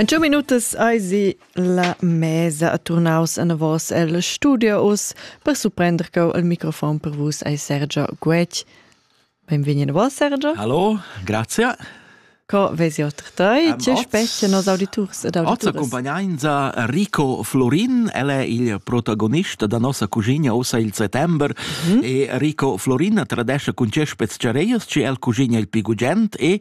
En two minutas eisi la mesa a turnaus anavos el studio us per surprender cau il microfon per vus ei Sergio Guetg. Benvegni a vos Sergio. Hallo, grazie. Co vesi otra tai? Tge specie nos auditurs ed auditoras? Oza accompagnanza Rico Florin, el è il protagonista da nossa cucina ussa il settembre mm -hmm. e Rico Florin tradesce con ce speciareias ci el cucina il pigugent e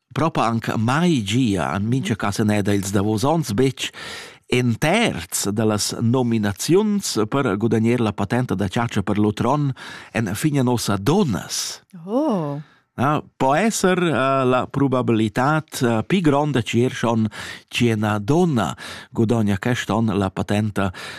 propa anc mai gia en mincha casa neda ils davos ons betg in terz da las nominaziuns per gudagnar la patenta da chatscha per l'utron en fine nossa donas. Oh. Ja, po esser uh, la probabilitad uh, pi gronda che schon ci una donna gudogna quest'on la patenta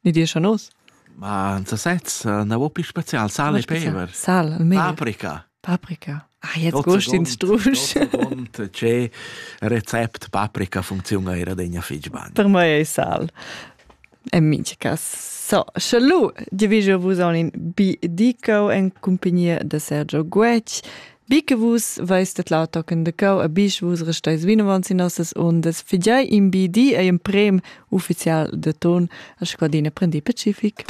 Ni dir schon us? Ma in sasez, na vo pli spezial, sal e peber. Sal, al meglio. Paprika. Paprika. Ah, jetzt gust in strusch. Tge rezept paprika funziona era degna fitg bene. Per me è sal. E minchia cas. So, sche lu, diviso vos on in bi dico en compagnia de Sergio Guetg, Bi che vus veis tedlau tochen de cau a bisch, vus resteis vinavant sin nossas ondas, figiai in bi di ei emprem ufficial de ton a scadina prendi pacific.